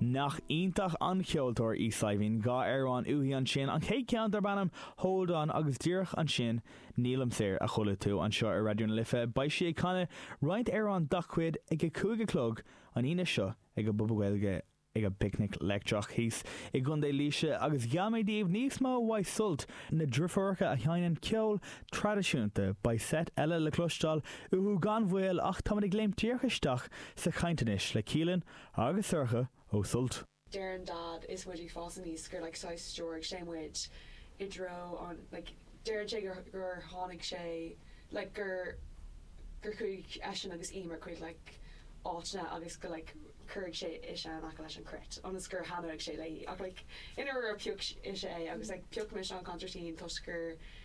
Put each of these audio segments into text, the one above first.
Nach iontach an ceoltóir í Saidhbhín, dhá amhrán uaithi ansin, an chéad ceann darb ainm 'Hold On' agus díreach ansin 'Nílim Saor' a chuala tú anseo ar Raidió na Life, beidh sí ag canadh roinnt amhrán dá cuid ag a cúig a chlog an Aoine seo ag an bPuball Gaeilge ag an bPicnic Leictreach thíos i gContae Laoise agus gheall mé daoibh níos mó uaidh Sult na dreifiúracha a sheinneann ceol traidisiúnta, beidh seit eile le cloisteáil uathu gan mhoill ach táimid ag léimt díreach isteach sa chaint anois le Caoilfhionn agus Sorcha ó Sult. Deireann Dad is muid ag fás aníos gur like saghas stiúraigh sé muid i dtreo an like deireann sé gur gur tháinig sé like gur gur chuaigh eisean agus Emer chuig like áiteanna agus go like cuireadh sé ise in aice leis an cruit ionas gur thaitneoidh sé léi ach like i ndáiríre pioc ise é agus like pioc mise an consairtín toisc gur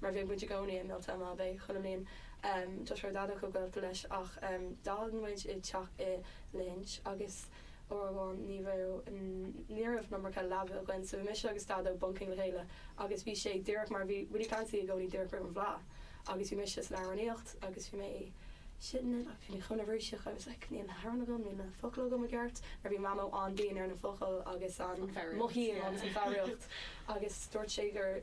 mar bhíodh muid i gcónaí ag Miltown Malbay chuile bhliain. Tá sé Daideo chomh gaolta leis ach d'fhan muid i teach i Lahinch agus uair amháin ní raibh, ní raibh iomarca leaba againn so bhí mise agus Daideo bunking le chéile agus bhí sé díreach mar bhí Willie Clancy i gcónaí díreach roimh an bhfleá agus bhí mise san amhránaíocht agus bhí mé shitting it agus bhí mé chomh neirbhíseach I was like níl na hamhráin agam, níl na focail agam i gceart mar bhí mamó an-dian ar na focail agus an mothú agus an foghraíocht agus dúirt sé gur.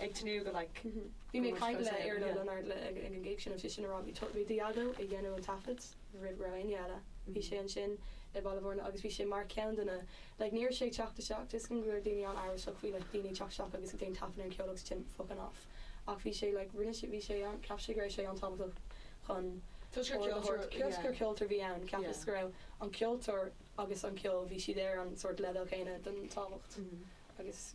ag tnúth go like. Bhí mé ag caint le Iarla Ó Lionáird ag an gig sin bhí seisean ag rá bhí bhí Daideo ag déanamh an taifead roimh raibh éinne eile bhí sé ansin i Baile Mhúirne agus bhí sé mar ceann de na like ní raibh sé ag teacht isteach tuigim go bhfuil daoine ann amhrasach faoi like daoine ag teacht isteach agus ag déan taifead ar an cheol agus ansin fucking off ach bhí sé like rinne sé bhí sé an ceapas sé go raibh sé an-tábhachtach chun Tuigtear ord a ceoltóir thabhairt yeah. Tuigtear ceoltóir bhí ann ceapas yeah. go raibh an ceoltóir agus an ceol bhí siad ar an sort leibhéal céanna den tábhacht agus.